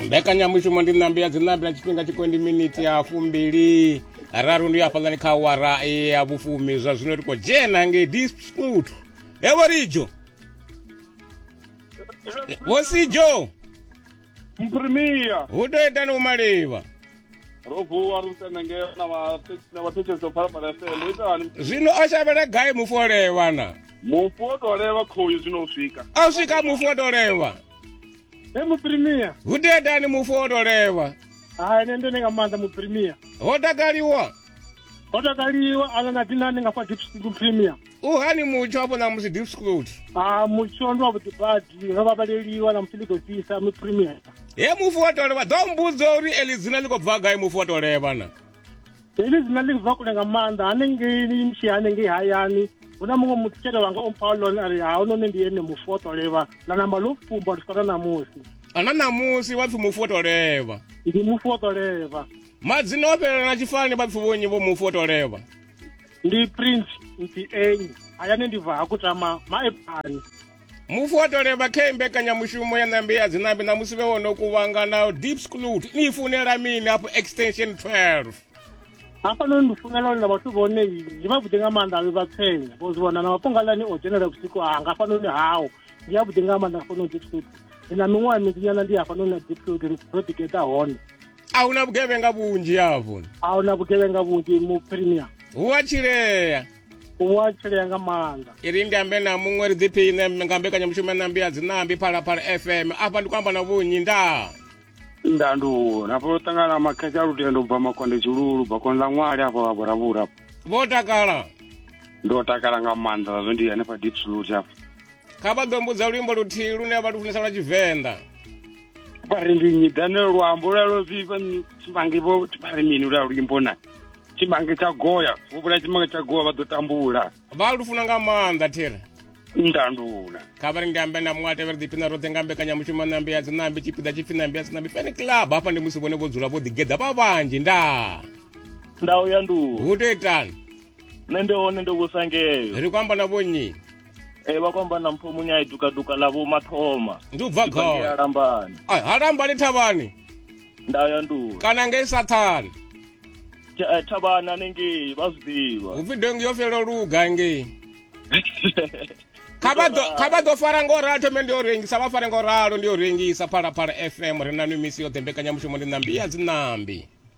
mbekanyamushumo ndi ṋambi ya dziṋambi na tshifhinga tshikwendi miniti ya fumbili raru ndi hafhaḽani kha wara ya vhufumi zwa zwino ri khou dzhena ngei disput evo rijo vosijo mprimiya hu tou itani u malivha ro vuwa ri tenda ngeo na vhathetshedzo phalaphala fm u ita hani zwino o shavhela gai mufu o levha na mufu o tou levha khoyu zwino u swika a u swika mufu o tou levha he muprimia hu dedani mufu o tou levha hai nṋe ndone nga maanḓa muprimia ho takaliwa ho takaliwa ana na dinani nga fa deep muprimia uhani mutsho hafho na musi deep scrolled ah mutsho ndi wavhuḓi badi ro vhavaleliwa na musi ḽi khou fhisa mi premier he mufu wa tolevha ḓo mbudzo uri eli dzina ḽi khou bva gai mufu wa tolevha na heḽi dzina ḽi bva kule nga maanḓa hanengei ni mshi hanengei hayani hu na muṅwe muthu tshele wanga ompha lone a ri ha u none ndi ene mufu wa tolevha na namba ḽo fumba u swika na ṋamusi ana ṋamusi vha pfi mufu wa tolevha ndi mufu wa tolevha madzina o fhelela na tshifani vha pfi vhonyi vho mufu wa tolevha ndi prince mpienyi hayani ndi bva ha kutama maepani mufu wa toleva khe mbekanyamushumo ya nambi ya dzinambi na musi vhe wo no kuvhangana deep sclut ni funela mini hafho extension 12 hafhanoni ndi funela uri na vhathu vhone ndi vhavhuḓi nga maanḓa avhe vha tsenya vho zwi vhona na mafhungalani o dzhenela vhusiku hanga hafhanoni hao ndi avhuḓi nga maanḓa hafhanoni deep sclut ndi na miṅwaha minzinyana ndi hafhanoni na deep sclut ro ḓigeḓa hone a hu na vhugevhenga vhunzhi hafhu a hu na vhugevhenga vhunzhi mu premier hu a tshilea hu a tshilea nga maanḓa iri ndi ambe na muṅwe ri ḓiphiṋe nga mbekanyamushumo nambi ya dzinambi phalaphala fm afha ndi khou amba na vhunyi ndaa ndandu hafho u ṱangana na makhetsha lutendo bva makonde tshilulu bakoni ḽa ṅwali afho vha vhuravhura vho takala ndo takala nga maanḓa zazwo ndi hanefha deep slut afho kha vha ḓo mbudza luimbo luthihi lune vha lu funesa lwa tshivenḓa vha ri ndi nyi dane luambo lwa lwo vhifha tshimange vho vha ri mini lwa luimbo na tshimange tsha goya vho vhula tshimange tsha goya vha ḓo tambula vha lu funa nga maanḓa thera ndandula kha vha ri ndi ambe na muṅwe a tevhela ḓipina roṱhe nga mbekanyamushumo nambe ya dzinambe tshipiḓa tshipfi nambe ya dzinambe fene club hafha ndi musi vhone vho dzula vho ḓigeḓa vha vhanzhi nda ndau ya nduhu hu to itani nṋe ndi hone ndo vhusangeyo ri khou amba na vhonnyi Eh vha kwamba na mpho munya iduka duka la vho mathoma. Ndi u bva gai? Ya lambani. Ai ha lambani thavhani. Nda ya ndu. Kana ngei sathani. Eh, thavhani anengei vha zwi ḓivha. Hu pfi dongi yo fela luga ngei. kha vha ḓo fara ngo ralo thome ndi yo rengisa vha fare ngo ralo ndi yo rengisa phalaphala fm ri na nwi misi yoṱhe mbekanyamushumo ndi ṋambi ya dzinambi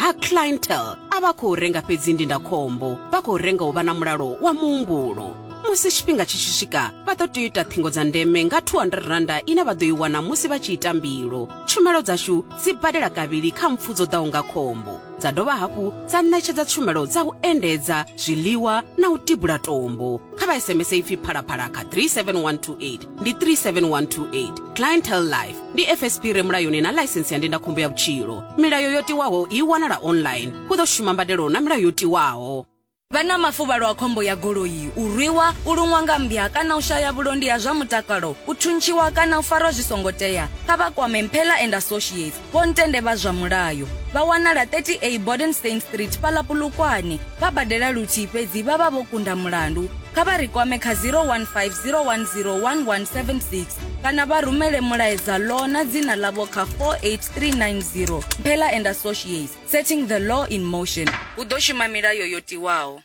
ha clientele a vha khou renga fhedzi ndindakhombo vha khou renga u vha na mulalo wa muhumbulo musi tshifhinga tshi tshi swika vha ḓo tea u ita ṱhingo dza ndeme nga 200 randa ine vha ḓo i wana musi vha tshi ita mbilo tshumelo dzashu dzi badela kavhili kha mpfu dzo ḓaho nga khombo dza dovha hafhu dza ṋetshedza tshumelo dza u endedza zwiḽiwa na u tibula tombo kha vha sms ipfi phalaphala kha 37128 ndi 37128 clientele life ndi fsp re mulayoni na ḽaisensi ya ndindakhombo ya vhutshilo milayo yo tiwaho i wanala online hu ḓo shuma mbadelo na milayo yo tiwaho vha na mafuvhalo a khombo ya goloi u rwiwa u luṅwa nga mmbya kana u shaya vhulondi ha zwa mutakalo u thuntshiwa kana u farwa zwi songo tea kha vha kwame mphela and associates Vho Ntende vha zwa mulayo vha wanala 30A Bodenstein Street fhaḽa Polokwane. Vha badela luthihi fhedzi vha vha vho kunda mulandu. Kha vha ri kwame kha 015 010 1176 kana vha rumele mulaedza law na dzina ḽavho kha 48390. Mphela and Associates, setting the law in motion. Hu ḓo shuma milayo yo tiwaho.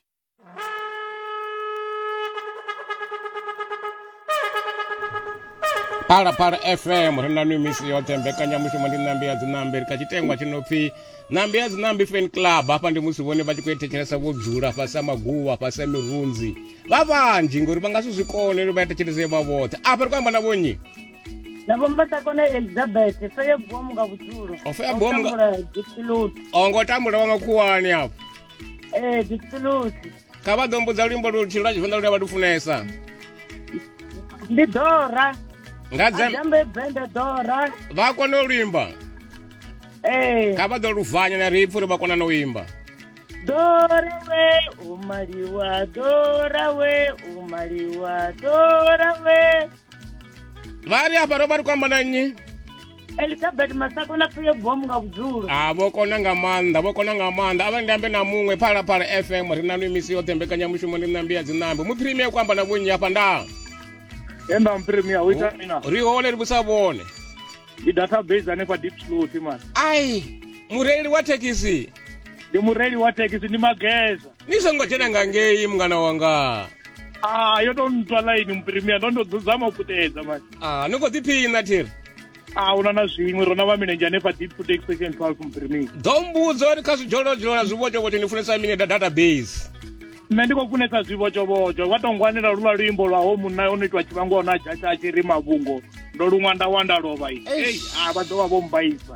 phalaphala fm ri na nwi misi yoṱhe mbekanyamushumo ndi ṋambi ya dziṋambi ri kha tshitengwa tshi no pfi ṋambi ya dziṋambi fan club hafha ndi musi vhone vha tshi khou ethetshelesa vho dzula fhasi a maguvha fhasi a mirunzi vha vhanzhi ngori vha nga si zwi kone ri vha ethetshelese vha vhoṱhe afha ri khou amba na vhonnyi navombatakona elizabeth feye bomu nga vhudzulo Ofeya bomu nga- dipiloti o ngo tambula wa makhuwani afho ee dipsulusi kha vha ḓo mbudza luimbo lutshilo lwa tshivenḓa lune vha lu funesa ndi dora nga dzembe dzembe dora vha kona u luimba ee kha vha ḓo luvhanya na ri pfhi uri vha kona na u imba dora we u maliwa dora we u maliwa dora we vari apa ro vari kuamba nanyi elizabeth masako na pfuye bomu nga vhudzulo a ah, vho kona nga maanḓa vho kona nga maanḓa a vha ndambe na muṅwe phalaphala fm ri na mimisi yoṱhe mbekanyamushumo ndi nambi ya dzinambi mu premier ku amba na vhonnyi afha nda enda mpremia u ita mina ri hole ri vhusa vhone ndi database hanefha deep slow timani ai mureili wa thekhisi ndi mureili wa thekhisi ndi mageza ni songo dzhena nga ngei mungana wanga ah yo to ntswa line muprimia ndo ndo dzudzama u puṱedza manje ah ni khou ḓiphina thiri ah una na zwiṅwe rona vha milenzhe hanefha deep food expression 12 muprimia ḓo mbudzo uri kha zwidzhololodzholola zwivhotshovhotsho ni funesa mini da database nṋe ndi khou funesa zwivhotshovhotsho vha to ngwanela luvha luimbo lwa ho munna o no itwa tshivhango ona dzhatshi a tshi ri mavhungo ndo luṅwa nda wanda lovha i a vha ḓo vha vho mbaisa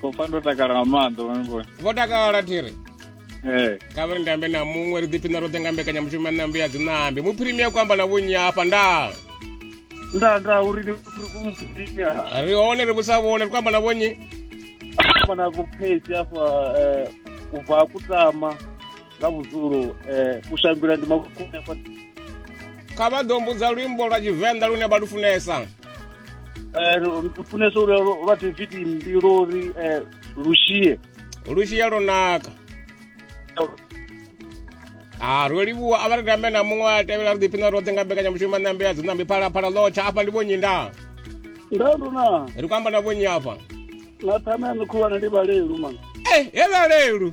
khou pfa ndo takala nga maanḓa vhone vho takala thiri ee kha vha ri ndambe na muṅwe ri ḓiphina roṱhe nga mbekanyamushumo ya nambi ya dzinambi muphirimia ku amba na vhonyi hafha nda nda nda uri ni uri ku muphirimia ri hone ri vhusa vhone ri ku amba na vhonyi amba na vhukhezi afha eh, u bva kutama nga vhudzulo u shangula ndi makukuṋe kha vha ḓo mbudza luimbo lwa tshivenḓa lune vha lu funesa funesa uri lwa tiviti mbilo uri lushie lushie lwo naka ha ro livhuwa a vha ri tambe na muṅwe a tevhela ri ḓiphina roṱhe nga mbekanyamushumo ṋambe ya dzinambi phalaphala ḽotsha afha ndi vhonyi nda nda luna ri khou amba na vhonyi afha na thamea ni khulwane ndi vhalelu mana e he vhalelu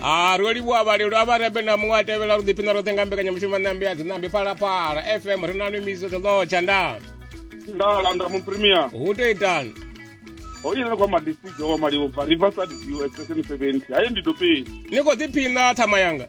ha ro livhuwa vhalelo a vha rebe na muṅwe a tevhela ro ḓiphina roṱhe nga mbekanyamushumo nambi ya dzinambi phalaphala fm ri na numiso ḓoḓotsha nda nda landa muprimia hu to itani ho ine kwa madisijo wa maliwo bva riverside view extension 70 haye ndi dopeni ni khou ḓiphina thama yanga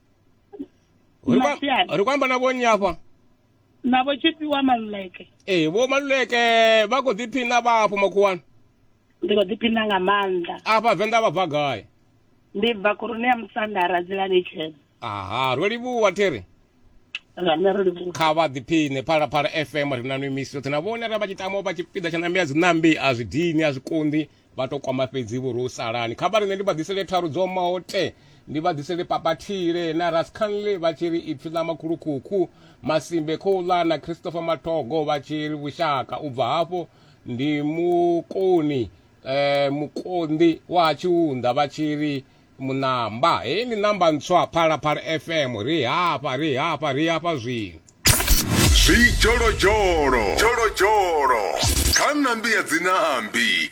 Uri kwa- Masiari. uri kwamba na vhonnyi afha na vho tshifhiwa maluleke ee vho maluleke vha khou ḓiphina vha afho makhuwani ndi khou ḓiphina nga maanḓa afha venḓa vha bva gai ndi bva khoroni ya musanda radzilani tshena aha ro livhuwa thiri rame ro livhuwa kha vha ḓiphine phalaphala fm ri na no imisi yoṱhe na vhone ra vha tshi tamo vha tshipiḓa tsha nambi a dzi nambi a zwi dini a zwi konḓi vha to kwama fhedzi vho ro salani kha vhari nṋe ndi vha ḓisele tharu dzo maote ndi vha ḓisele papathile na rascanley vha tshi ri ipfi ḽa makhulukhukhu masimbe khouḽa na christopher matogo vha tshi ri vhushaka u bva hafho ndi mukoni um mukonḓi wa ha tshiunḓa vha tshi ri munamba heyi ndi namba ntswa phalaphala fm ri hafha ri hafha ri hafha zwino zwidzholodzholo kha ṋambi ya dzinambi